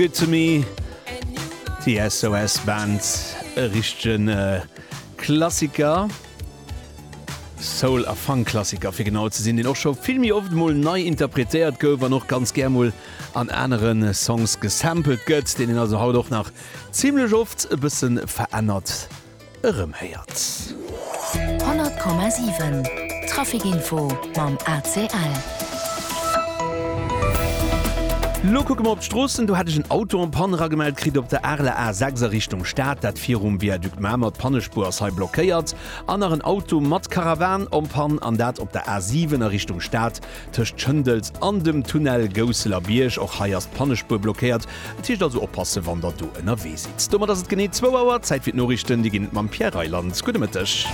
Good to me, déi SOS Band, e richtegen Klassiker, Soul a Funk Klassiker fir genau ze sinn, deen och scho vill méi oft mol nei interpretéiert gouf an och ganz gär mol an anere Songs gesampelt gëtt, deen een also haut och nach zimmlech oft e bësse verännert. erëmhéiert. 100,7 Trafic Info mam ACL. Lo kucke mer op d'Stroossen. Do hat ech en Auto en Panne eragemellt kritt op der Arler A6 a Richtung Stad. Dat virum Viaduc Mamer. D'Pannespuer ass hei blockéiert. An nach en Auto mat Karawan en Panne, an dat op der A7 a Richtung Stad. Tëscht Schëndels an dem Tunnel Gousseler Bierg, och hei ass d'Pannespuer blockéiert. Et heescht also oppassen, wann der do ënnerwee sidd. Domat ass et genee zwou Auer. Zäit fir d'Noriichten. Déi ginn et mam Pierre Reyland. Gudde Mëtteg.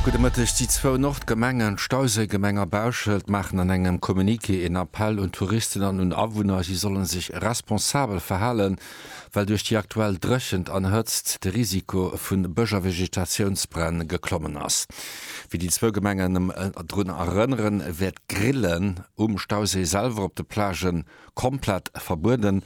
Gudde Mëtteg. Déi zwou Nordgemengen, d'Stauséigemeng a Bauschelt, maachen an engem Communiqué een Appell un d'Touristen an un Awunner, si solle sech responsabel verhalen. well duerch déi aktuell Dréchent an Hëtzt de Risiko vu Bësch a Vegetatiounsbränn geklommen ass. Wéi déi zwou Gemengen drun erënneren, wäert d'Grillen um Stauséi selwer op de Plagë komplett verbueden.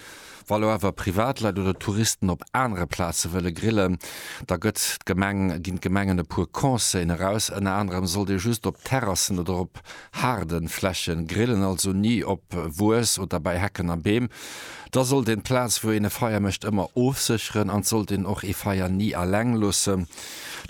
Wa elo awer Privatleit oder Touristen op anere Plaze wëlle grillen, da gëtt d'Gemeng ginn d'Gemengen e puer Conseillen eraus. Ënner anerem sollt ee just op Terrassen oder op Haarden Flächen, grillen also ni op Wues oder bei Hecken a Beem. Da sollt een d'Plaz wou een e Feier mécht ëmmer ofsécheren an d'sollt een och ee Feier ni alleng loossen.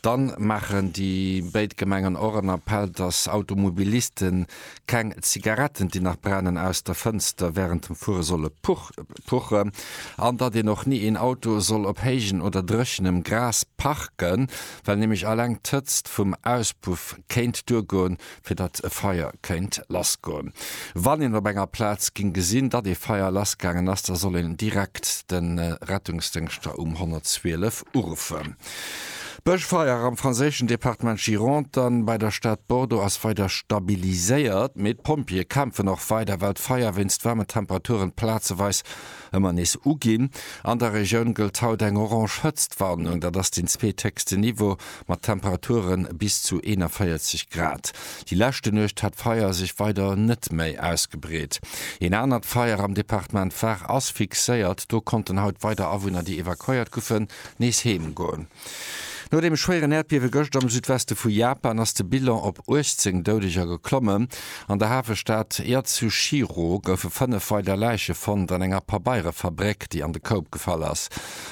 Dann maachen déi béid Gemengen och en Appell dass Automobilisten keng Zigaretten déi nach brennen aus der Fënster während dem Fuere solle puchen an datt een och ni een Auto soll op héijen oder dréchenem Gras parken, well nämlech alleng d'Hëtzt vum Auspuff kéint duergoen fir datt e Feier kéint lassgoen. Wann een op enger Plaz géing gesinn, datt ee Feier lassgaangen ass, da soll een direkt de Rettungsdéngschter um 112 uruffen. D'Bëschfeier am franséischen Departement Gironde an bei der Stad Bordeaux ass weider stabiliséiert, mee d'Pompjeeë kämpfen och weider, well d'Feier wéinst waarmen Temperaturen plazeweis Ëmmer nees uginn. An der Regioun gëllt haut eng orange Hëtztwarnung, dat ass den zweetheechsten Niveau, mat Temperature bis zu 41 Grad. Déi leschte Nuecht hat d'Feier sech weider net méi ausgebreet. Een anert Feier am Departement Var ass fixéiert. Do konnten haut weider Awunner, déi evakuéiert goufen, nees heem goen. No dem schwéieren Äerdbiewe gëscht am Südweste vu Japan ass de Bilan op 18 Doudeger geklommen. An der Hafestad Yatsushiro goufe fënnef weider Läiche fonnt an enger Pabeirefabrick, déi an de Koup gefall ass.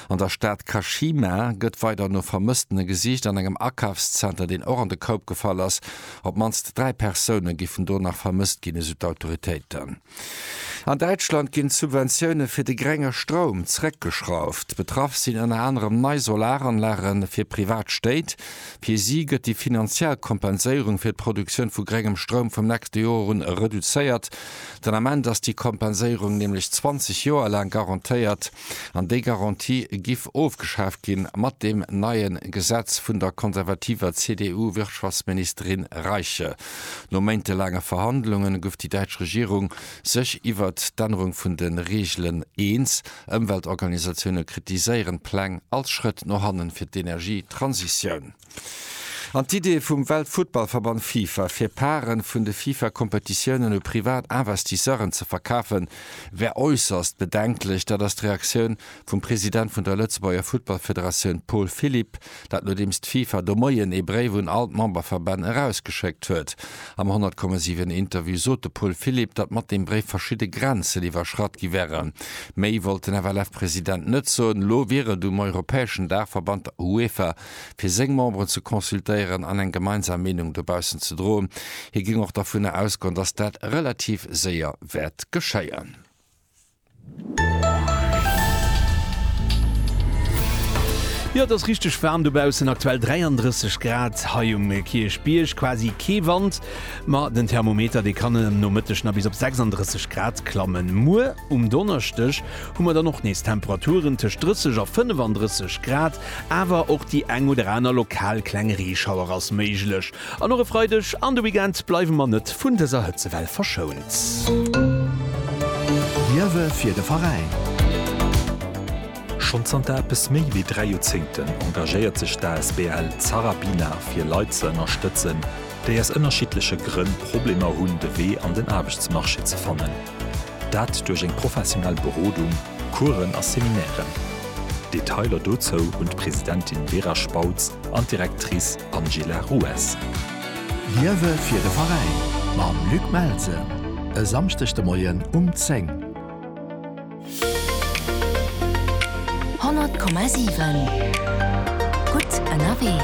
An der Stad Kashima gëtt weider no Vermësstene gesicht. An engem Akafszenter, deen och an de Koup gefall ass, op d'mannst dräi Persoune giffen do nach vermësst ginn, esou d'Autoritéiten. An Däitschland ginn d'Subventioune fir de grenge Stroum zeréckgeschrauft. Betraff sinn ënner anerem nei Solaranlage fir privat Stéit. Fir si gëtt déi finanziell Kompenséierung fir d'Produktioun vu grengem Stroum vum nächste Joer un reduzéiert. Den Ament ass déi Kompenséierung nämlech 20 Joer laang garantéiert. An déi Garantie giff ofgeschaaft ginn mat deem neie Gesetz vun der konservativer CDU-Wirtschaftsministerin Reiche. No méintelaange Verhandlungen gouf déi däitsch Regierung sech iwwer d'Ännerung vun de Reegelen eens. Ëmweltorganisatioune kritiséieren d'Pläng als Schrëtt no hannen fir d'Energietransitioun. An d'Idee vum Weltfuttballverband Fifa, fir Parten vun de Fifa-Kompetitiounen u privat Investisseuren ze verkafen, wär äusserst bedenklech. Dat ass d'Reaktioun vum President vun der Lëtzebuerger Futtballfederatioun Paul Philipp. Dat nodeems d'FIFA de Moien ee Bréif un all d'Memberverbänn erausgeschéckt huet. Am 100,7 Interview sot de Paul Philipp, datt mat deem Bréif verschidde Grenzen iwwerschratt gi wären. Méi wollt den FLF-President net soen. Elo wier et um europäeschen Daachverband, der UEFA, fir seng Memberen ze consultéieren an eng gemeinsam Meenung dobaussen ze droen. Hie géing och dervunner ausgoen, datt dat relativ séier wäert geschéien. Jo et ass richteg waarm dobaussen, aktuell 33 Grad hei um Kierchbierg, quasi kee Wand, ma den Thermometer dee kann um Nomëtteg nach bis op 36 Grad klammen. Muer um Donneschdeg hu mer dann och nees Temperaturen tëscht 30 a 35 Grad, awer och déi eng oder aner lokal kleng Reeschauer ass méiglech. An och e Freideg an de Weekend bleiwe mer net vun dëser Hëtzewell verschount. Liewe fir de Veräin! Schonn zanter eppes méi wéi dräi Joerzéngten engagéiert sech d'asbl Zarabina fir Leit ze ënnerstëtzen, déi aus ënnerschiddleche Grënn Problemer hunn, de Wee an den Aarbechtsmarché ze fannen. Dat duerch eng professionell Berodung, Coursen a Seminairen. Detailer dozou hunn d'Presidentin Vera Spautz an d'Directrice Angela Ruess. Liewe fir de Veräin mam Luc Melsen e Samschdeg de Moien um 10. 100,7 gutt ënnerwee.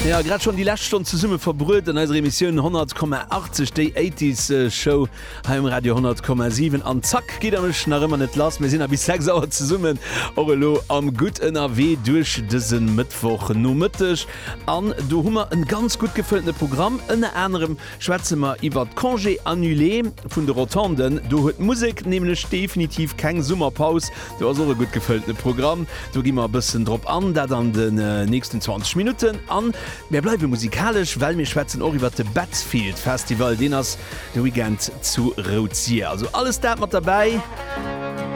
Mir hu grad schonn déi lescht Stonn zesumme verbruet an eiser Emissioun 10,80, déi 80s Show hei um Radio 10,7. An zack geet der mech nach ëmmer net lass. Mir sinn nach bis 6 Auer zesummen, och elo am Gutt ënnerwee duerch dëse Mëttwochnomëtteg. An do hu mer e ganz gutt gefëlltene Programm, ënner anerem, Schwätze mer iwwert d'Congé annulé vun de Rotonden. Do huet d'Musek nämlech definitiv keng Summerpaus. Do ass och e gutt gefëllte Programm. Do gi mer e bëssen drop an, dat an de nächsten 20 Minutten. An mir bleiwe musikalesch, well mir schwätzen och iwwert de Betzfield Festival. Deen ass de Weekend zu Rouzier. Also alles dat mat derbäi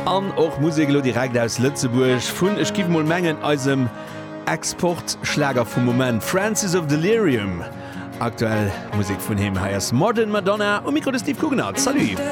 an och Musek elo direkt aus Lëtzebuerg vun, ech giff emol mengen, eisem Export-Schlager vum Moment, Francis of Delirium. Aktuell Musek vun him, hei ass Modern Madonna um Mikro de Steve Guggenard. Salut!